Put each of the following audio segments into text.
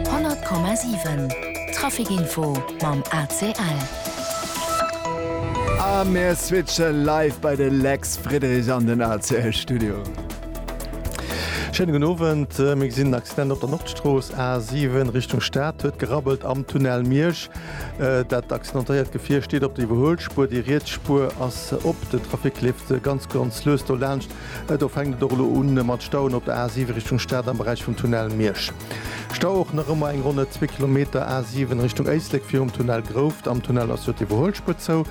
100,7 Traficinfo mam ACL. A mir switche live bei de Lex Friderich an den ACL Studio. Schéine gudden Owend. Mir gesinn en Accident op der Nordstrooss, A7 Richtung Stad. Huet gerabbelt am Tunnel Miersch. Dat accidentéiert Gefier steet op der Iwwerhuelspuer. Déi riets Spuer ass op. Den Trafic leeft ganz, ganz lues do laanscht. Do fänkt et och elo un mat Stauen op der A7 Richtung Stad am Beräich vum Tunnel Miersch. Stau och nach ëmmer eng ronn net zwee Kilometer A7 Richtung Éislek virum Tunnel Grouft. Am Tunnel ass jo d'Iwwerhuelspuer zou.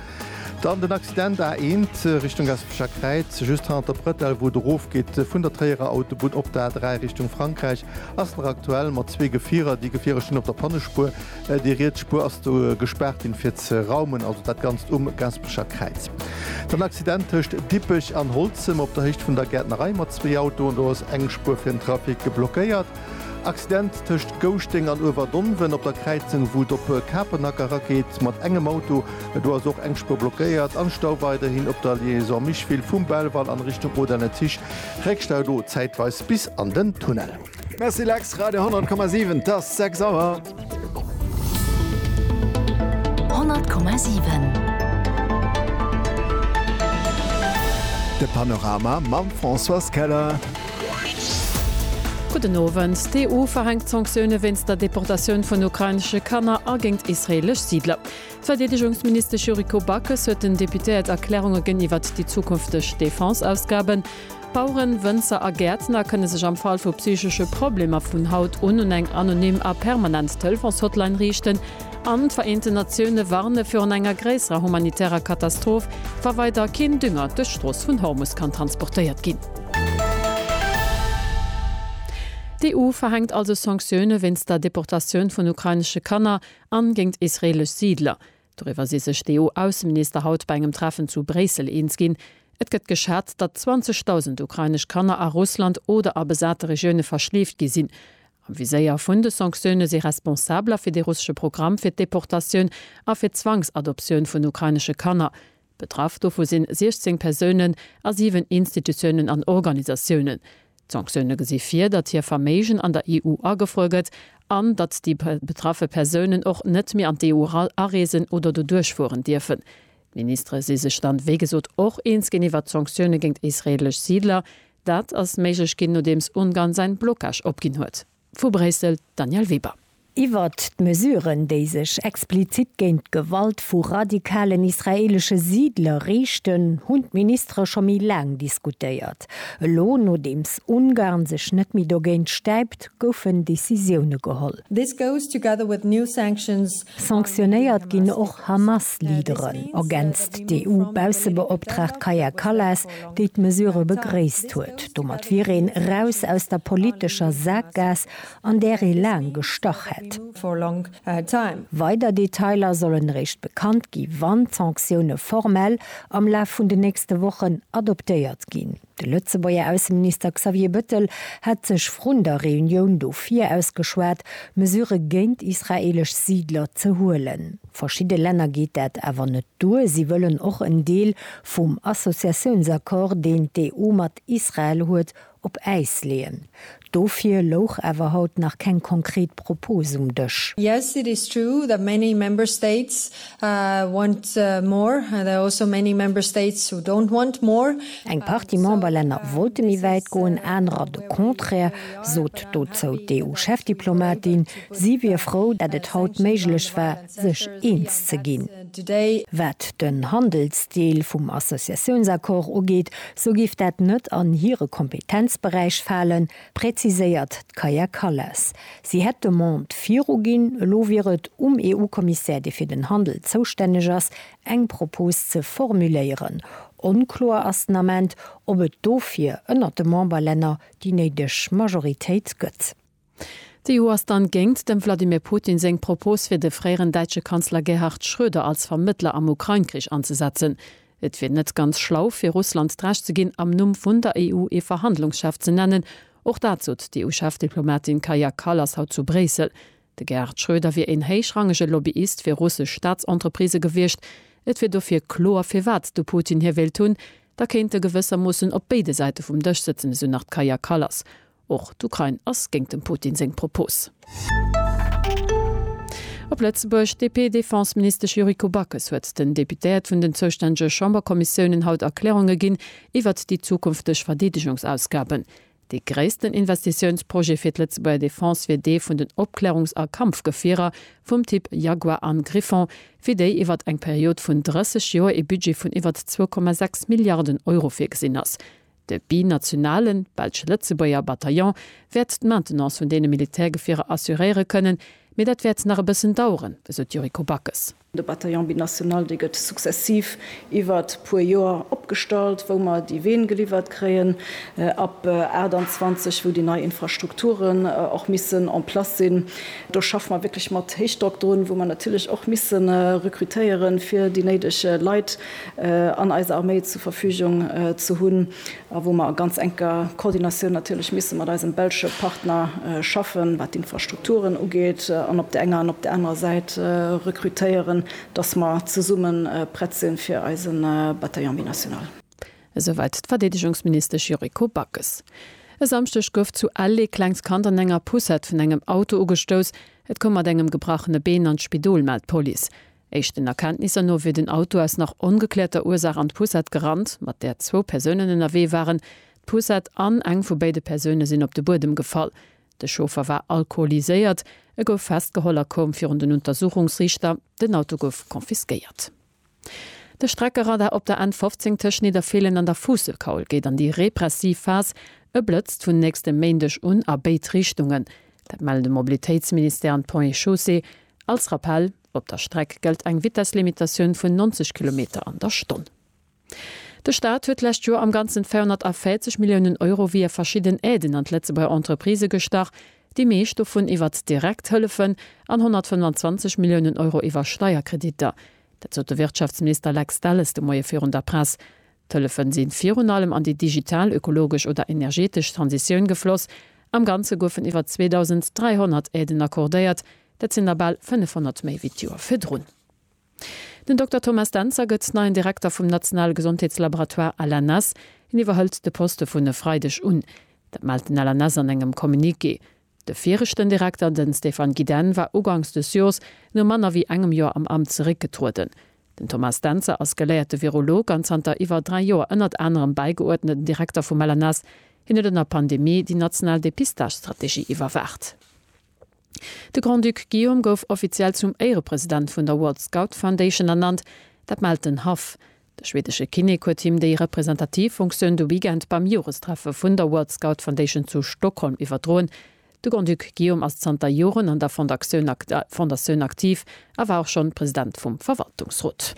Dann den Accident A1 Richtung Gaspecher Kräiz, just hannert der Brëtell, wou et erofgeet vun der Tréierer Autobunn op d'A3 Richtung Frankräich, ass nach aktuell mat zwee Gefierer. Déi Gefierer stinn op der Pannespuer. Déi riets Spuer ass do gespaart ginn, fir ze raumen, also dat Ganzt um Gaspecher Kräiz. Dann Accident tëscht Dippech an Holzem op der Héicht vun der Gäertnerei mat zwee Autoen, do ass eng Spuer fir den Trafic blockéiert. Accident tëscht Gouschteng an Uewerdonven op der Kräizung, wou et op Kapenhack erageet mat engem Auto, do ass och eng Spuer blockéiert. An Stau weiderhin op der Liaison Micheville vum Belval an Richtung Odenezich, Réckstau do zäitweis bis an den Tunnel. Merci Lex, Radio 10,7 t'ass 6 Auer. De Panorama mam Françoise Keller. Gudden Owend. D'EU verhänkt Sanktioune wéinst der Deportatioun vun ukrainesche Kanner a géint israeelesch Siidler. D'Verdeedegungsministesch Yuriko Backes huet den Deputéiert Erklärunge gënn iwwert déi zukünfteg Defense-Ausgaben. Baueren, Wënzer a Gäertner kënne sech am Fall vu psychesche Problemer vun haut un un eng anonym a permanent Telefons-Hotline riichten an d'Vereenten Natioune warne virun enger gréisserer humanitärer Katastroph, wa weider keen Dünger duerch d'Strooss vun Hormus kann transportéiert ginn. D'EU verhänkt also Sanktioune wéinst der Deportatioun vun ukrainesche Kanner an géint israelesch Siidler. Doriwwer si sech d'EU-Ausseminister haut bei engem Treffen zu Bréissel eens ginn. Et gëtt geschat, datt 20.000 ukrainesch Kanner a Russland oder a besate Regioune verschleeft gi sinn. Am Viséier vun de Sanktioune si Responsabler fir de russesche Programm fir d'Deportatioun a fir d'Zwangsadoptioun vun ukrainesche Kanner. Betraff dovu sinn 16 Persounen a 7 Institutiounen an Organisatiounen. D'Sanktioune gesi vir, datt hir Verméigen an der EU agefruer gëtt an datt déi betraffe Persounen och net méi an d'EU areesen oder do duerchfueren dierfen. D'Ministere si sech dann, wéi gesot, och eens ginn iwwert d'Sanktioune géint israeelesch Siidler. Dat ass méiglech ginn, nodeems Ungarn säin Blocage opginn huet. Vu Bréissel, d'Danièle Weber. Iwwert d'Mesuren, déi sech explizit géint d'Gewalt vu radikalen israeelesche Siidler riichten, hunn d'Ministere scho méi laang diskutéiert. Elo, nodeems Ungarn sech net méi dogéint stäipt, goufen Decisioune geholl. This goes together with new sanctions Sanktionéiert ginn och Hamas-Leaderen, ergänzt d'EU-Baussebeoptraagt Kaja Kallas, déi d'Mesurë begréisst huet. Domat wier een eraus aus der politescher Saakgaass, an där ee laang gestach hätt. Weider Detailer sollen eréischt bekannt gi wann d'Sanktioune formell am Laf vun den nächste Wochen adoptéiert ginn. De Lëtzebuerger Ausseminister Xavier Bëttel hat sech vrun der Reunioun dofir ausgeschwat, Mesurë géint israeelesch Siidler ze huelen. Verschidde Länner geet dat awer net duer. Si wëllen och en Deel vum Associatiounsaccord, deen d'EU mat Israel huet, op Äis leeën. Dofir louch awer haut nach keng konkret Propose um Dësch. Yes, it is true that many Member States want more. There are also many Member States who don't want more. Eng Partie Memberlänner wollte méi wäit goen, anerer de Contraire, sot dozou d'EU-Chefdiplomatin. Si wier frou, dat et haut méiglech war, sech eens ze ginn. Wat den Handelsdeel vum Associatiounsaccord ugeet, sou géif dat net an hire Kompetenzberäich falen, präziséiert d'Kaja Kallas. Si hätt d'Demande viruginn, elo wier et um EU-Kommissär, dee fir den Handel zoustänneg ass, eng Propos ze formuléieren. Onkloer ass den Ament, ob et dofir ënnert de Memberlänner déi néideg Majoritéit gëtt. D'EU ass dann géngt dem Wladimir Putin seng Propos fir de fréieren däitsche Kanzler Gerhard Schröder als Vermëttler am Ukrain-Krich anzesetzen. Et wier net ganz schlau fir Russland d'Recht ze ginn am Numm vun der EU ee Verhandlungschef ze nennen. Och dat sot d'EU-Chefdiplomatin Kaja Kallas haut zu Bréissel. De Gerhard Schröder wier een héichrangege Lobbyist fir russesch Staatsentreprisë gewiescht. Et wier dofir kloer firwat de Putin hie wéilt hunn. Da kéint e gewëssermoossen op béide Säite vum Dësch sëtzen, esou nach d'Kaja Kallas. Och d'Ukrain ass géingt dem Putin seng Propos. Op Lëtzebuerg, D'DP-Defense-Ministesch Yuriko Backes huet den Deputéiert vun den zoustännege Chamberkommissiounen haut Erklärunge ginn iwwert déi zukünfteg Verdeedegungsausgaben. Dee gréissten Investitiounsprojet fir d'Lëtzebuerger Defense wier dee vun den Opklärungs a Kampfgefierer vum Typ Jaguar an Griffon, fir déi iwwert eng Period vun 30 Joer ee Budget vun iwwert 2,6 Milliarden Euro virgesinn ass. De binationalen, Belsch-Lëtzebuerger, Bataillon wäert d'Maintenance vun deene Militärgefierer assuréiere kënnen, mee dat wäert nach e bëssen daueren, esou d'Yuriko Backes. De Bataillon binational, dee gëtt successiv iwwert e puer Joer opgestallt, wou mer déi Ween geliwwert kréien, ab 28, wou déi nei Infrastrukturen och missen en place sinn. Do schaffe mer wierklech mat Héichdrock drun, wou mer natierlech och misse rekrutéieren, fir déi néideg Leit an eis Arméi zur Verfügung ze hunn a wou mer a ganz enker Koordinatioun natierlech misse mat eisem belsche Partner schaffen, wat d'Infrastrukturen ugeet an op der enger an op der anerer Säit rekrutéieren, dass mer zesumme prett sinn, fir eise Bataillon binational. Esouwäit d'Verdeedegungsministesch Yuriko Backes. E Samschdeg gouf zu Ell ee klengt Kand an enger Poussette vun engem Auto ugestouss. Et koum mat engem gebrachene Been an d'Spidol, mellt d'Police. Éischten Erkenntnisser no wier den Auto aus nach ongekläerter Ursaach an d'Poussette gerannt, mat där zwou Persounen ënnerwee waren. D'Poussette an eng vu béide Persoune sinn op de Buedem gefall. De Chauffer war alkoholiséiert. E gouf festgeholl a koum virun den Untersuchungsriichter. Den Auto gouf confisquéiert. De Streckeradar op der N 15 tëscht Nidderfeelen an der Fuusselkaul geet an déi repressiv Phas. E blëtzt vun nächstem Méindeg un a béid Richtungen. Dat mellen de Mobilitéitsministère an d'Ponts et Chaussées. Als Rappell. Op der Streck gëllt eng Vitesslimitatioun vun 90 Kilometer an der Stonn. De Staat huet d'lescht Joer am Ganzen 240 Milliounen Euro via verschidden Aiden an d'Lëtzebuerger Entreprisë gestach, déi meescht dovun iwwert direkt Hëllefen an 125 Milliounen Euro iwwer Steierkreditter. Dat sot de Wirtschaftsminister Lex Delles de Moie virun der Press. D'Hëllefen sinn virun allem an déi digital, ökologesch oder energetesch Transitioun gefloss. Am Ganze goufen iwwer 2.300 Aiden accordéiert, dat sinn der bal 500 méi wéi d'Joer virdrun. Den Dokter Thomas Dentzer gëtt neien Direkter vum nationale Gesondheetslaboratoire LNS. Hien iwwerhëlt de Poste vun e Freideg un. Dat mellt den LNS an engem Communiqué. De viregten Direkter, den Stéphane Gidenne, war ugangs des Joers no manner wéi engem Joer am Amt zeréckgetrueden. Den Thomas Dentzer ass geléierte Virolog an zanter iwwer dräi Joer ënnert anerem bäigeuerdneten Direkter vum LNS. Hien huet an der Pandemie déi national Depistagestrategie iwwerwaacht. De Grand-Duc Guillaume gouf offiziell zum Éierepresident vun der World Scout Foundation ernannt. Dat mellt den Haff. De schwedesche Kinnek huet him déi representativ Funktioun de Weekend beim Jorestreffe vun der World Scout Foundation zu Stockholm iwwerdroen. De Grand-Duc Guillaume ass zanter Joren an der Fondatioun aktiv a war och schonn President vum Verwaltungsrot.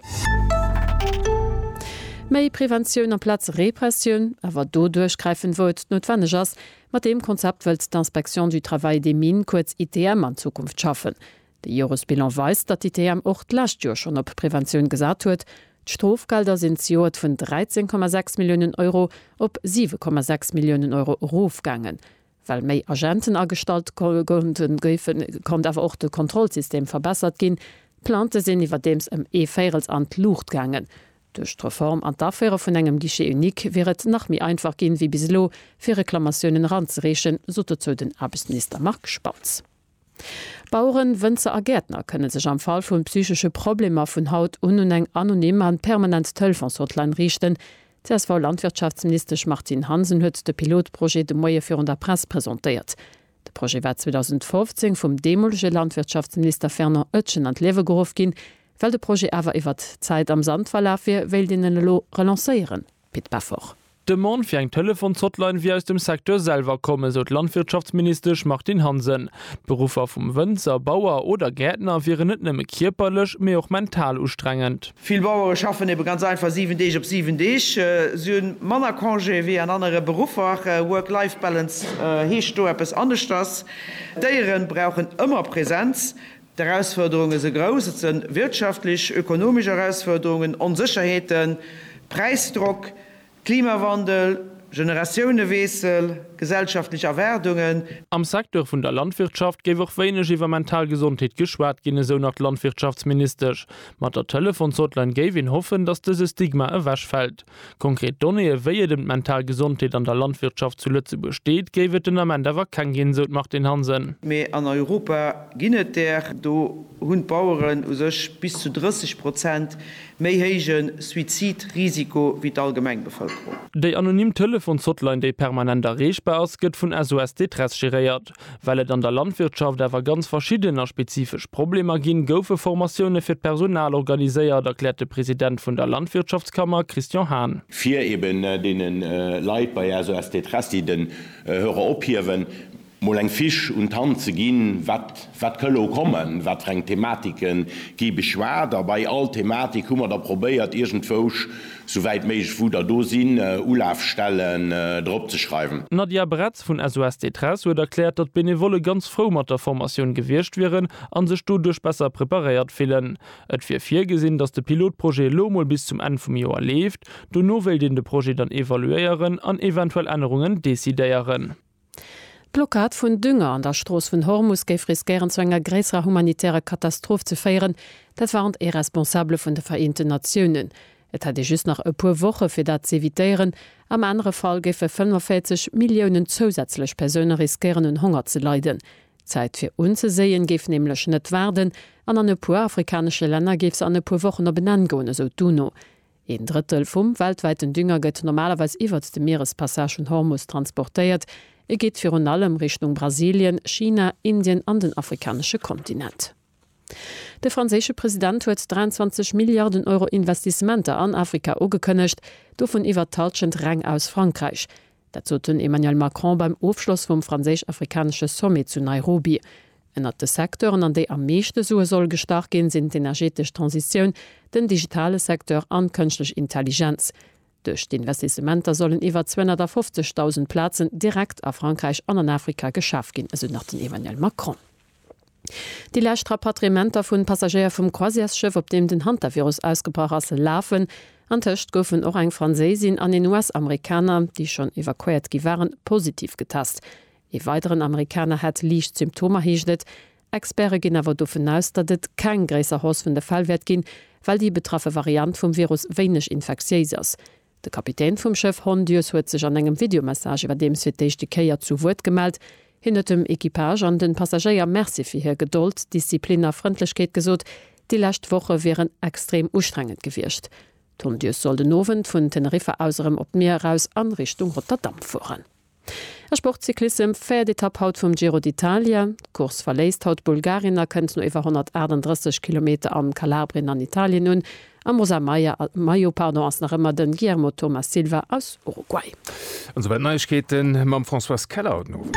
Méi Preventioun amplaz Repressioun, awer do duerchgräifen, wou et noutwenneg ass. Mat deem Konzept wëllt d'Inspection du Travail des Mines, kuerz ITM, an Zukunft schaffen. De Joresbilan weist, datt d'ITM och d'lescht Joer schonn op Preventioun gesat huet. D'Strofgelder sinn zejoert vun 13,6 Milliounen Euro op 7,6 Milliounen Euro erofgaangen, well méi Agenten agestallt goufen, konnt awer och de Kontrollsystem verbessert ginn. D'Plaintë sinn iwwerdeems ëm ee Véirels an d'Luucht gaangen. Duerch d'Reform an d'Aféiere vun engem Guichet unique wier et nach méi einfach ginn, wéi bis elo, fir Reklamatiounen eranzereechen, sot dozou den Aarbechtsminister Marc Spautz. Baueren, Wënzer a Gäertner kënne sech am Fall vun psychesche Problemer vun haut un un eng anonym an permanent Telefons-Hotline riichten. D'CSV-Landwirtschaftsministesch Martine Hansen huet de Pilotprojet de Moie virun der Press presentéiert. De Projet war 2015 vum deemolege Landwirtschaftsminister Fernand Oetjen an d'Liewe geruff ginn. Well de Projet awer iwwert d'Zäit am Sand verlaf wier, wéilt een en elo relancéieren. Pit Peffer. D'Demande fir eng Telefons-Hotline wier aus dem Secteur selwer komm, esou d'Landwirtschaftsministesch Martine Hansen. D'Beruffer vum Wënzer, Bauer oder Gäertner wieren net nëmme kierperlech, mee och mental ustrengend. Vill Bauere schaffen ebe ganz einfach 7 Deeg op 7 Deeg. Si hu manner Congé wéi an anere Beruffer. Work-Life-Balance heescht do eppes aneschters. D'Déiere brauchen ëmmer Presenz. D'Erausfuerderunge se grouss. Et se wirtschaftlech, ökonomesch Erausfuerderungen, Onsécherheeten, Präisdrock, Klimawandel, Generatiouneweessel, gesellschaftlech Erwaardungen. Am Secteur vun der Landwirtschaft géif och wéineg iwwer mental Gesondheet geschwat ginn, esou nach d'Landwirtschaftsministesch. Mat der Telefons-Hotline géif een hoffen, datt dëse Stigma ewechfält. Konkret Donnéeë wéi et ëm d'mental Gesondheet an der Landwirtschaft zu Lëtzebuerg steet, géif et den Ament awer keng ginn, esou d'Martine Hansen. Mee an Europa ginn et där. Do hunn d'Baueren u sech bis zu 30 Prozent méi héije Suizidrisiko wéi d'allgemeng Bevëlkerung. Déi anonym Telefons-Hotline, déi permanent erreechbar ass, gëtt vun SOS Détresse geréiert. Well et an der Landwirtschaft awer ganz verschidden a spezifesch Problemer ginn, goufe Formatioune fir d'Personal organiséiert, erkläert de President vun der Landwirtschaftskammer Christian Hahn. fir eben deene Leit bei SOS Détresse, déi den Hörer ophiewen, mol eng Fiche un d'Hand ze ginn, wat wat ka elo kommen, wat fir eng Thematike gi beschwat. A bei all Thematik hu mer da probéiert iergendwousch Sou wäit méiglech wou der do sinn, Ulafstellen drop ze schreiwen. D'Nadia Bretz vun SOS Détresse huet erkläert, datt d'Benevolle ganz frou mat der Formatioun gewiescht wieren a sech doduerch besser preparéiert fillen. Et wier virgesinn, datt de Pilotprojet elo mol bis zum Enn vum Joer leeft. Dono wéilt een de Projet dann evaluéieren an eventuell Ännerungen decidéieren. D'Blockad vun Dünger an der Strooss vun Hormus géif riskéieren zu enger gréisserer humanitärer Katastroph ze féieren, dat warnt ee Responsabele vun de Vereenten Natiounen. Et hätt ee just nach e puer Woche fir dat z'evitéieren. Am anere Fall géife 45 Milliounen zousätzlech Persoune riskéieren un Honger ze leiden. D'Zäit fir unzeséien géif nämlech net waarden an an e puer afrikanesche Länner géif se an e puer Wochen op en Enn goen, esou d'UNO. Een Drëttel vum weltwäiten Dünger gëtt normalerweis iwwert de Mierespassage vun Hormus transportéiert. E geet virun allem Richtung Brasilien, China, Indien an den afrikanesche Kontinent. De franséische President huet 23 Milliarden Euro Investissementer an Afrika ugekënnegt, dovun iwwert d'Hallschent reng aus Frankräich. Dat sot den Emmanuel Macron beim Ofschloss vum franséisch-afrikanesche Sommet zu Nairobi. Ënnert de Secteuren, an déi am meeschte Sue soll gestach ginn, sinn d'energetesch Transitioun, den digitale Secteur an d'Kënschtlech Intelligenz. Duerch d'Investissementer sollen iwwer 250.000 Plazen direkt a Frankräich an an Afrika geschaf ginn, esou nach den Emmanuel Macron. Déi lescht Rapatriementer vun Passagéier vum Croisièresschëff, op deem den Hantavirus ausgebrach ass, lafen. Antëscht goufen och eng Franséisin an een US-Amerikaner, déi schonn evakuéiert gi waren, positiv getest. Ee weideren Amerikaner hätt liicht Symptomer, heescht et. Experte ginn awer dovun aus, datt et keng gréisser Hausse vun de Fäll wäert ginn, well déi betraffe Variant vum Virus wéineg infektiéis ass. De Kapitän vum Schëff Hondius huet sech an engem Videomessage iwwerdeems fir d'éischte Kéier zu Wuert gemellt. Hien huet dem Equipage an de Passagéier Merci fir hir Gedold, Disziplin a Frëndlechkeet gesot. Déi lescht Woche wieren extrem ustrengend gewiescht. D'Hondius soll den Owend vun Teneriffa aus erëm op d'Mier eraus an Richtung Rotterdam fueren. A Sportcyclissem, véiert Etapp haut vum Giro d'Italia. D'Course verléisst haut Bulgarien a kënnt no iwwer 138 Kilometer an Kalabrien an Italien un. Am rosa Maillot ass nach ëmmer de Guillermo Thomas Silva aus Uruguay. An esouwäit d'Neiegkeete mam Françoise Keller haut den Owend.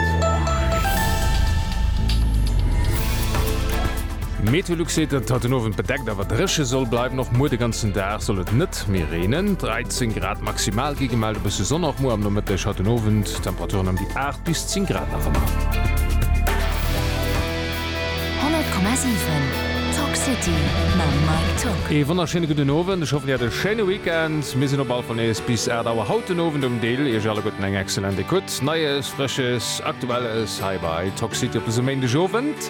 MeteoLux seet, datt et haut den Owend bedeckt awer dréche soll bleiwen. Och muer de ganzen Dag soll et net. Nacht méi reenen, 13 Grad maximal gi gemellt. E bësse Sonn och muer am Nomëtteg. Haut den Owend Temperaturen ëm déi 8 bis 10 Grad nach ëmmer. 100,7 Talk City mam Mike Tock. Ee wonnerschéine gudden Owend. Ech hoffen dir hat e schéine Weekend. Mir sinn op allefall nees bis 8 Auer haut den Owend um Dill. Iech alleguerten eng excellent Ecoute. Neies, Frësches, Aktuelles hei bei Talk City op dësem Méindegowend.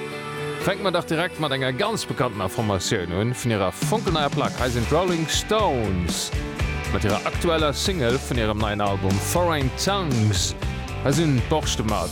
Fänke mer dach direkt mat enger ganz bekanntener Formatioun un, vun hirer fonkelneier Plack. Hei sinn d'Rolling Stones mat hirer aktueller Single vun hirem neien Album Foreign Tongues. Hei sinn d'Borschte mat.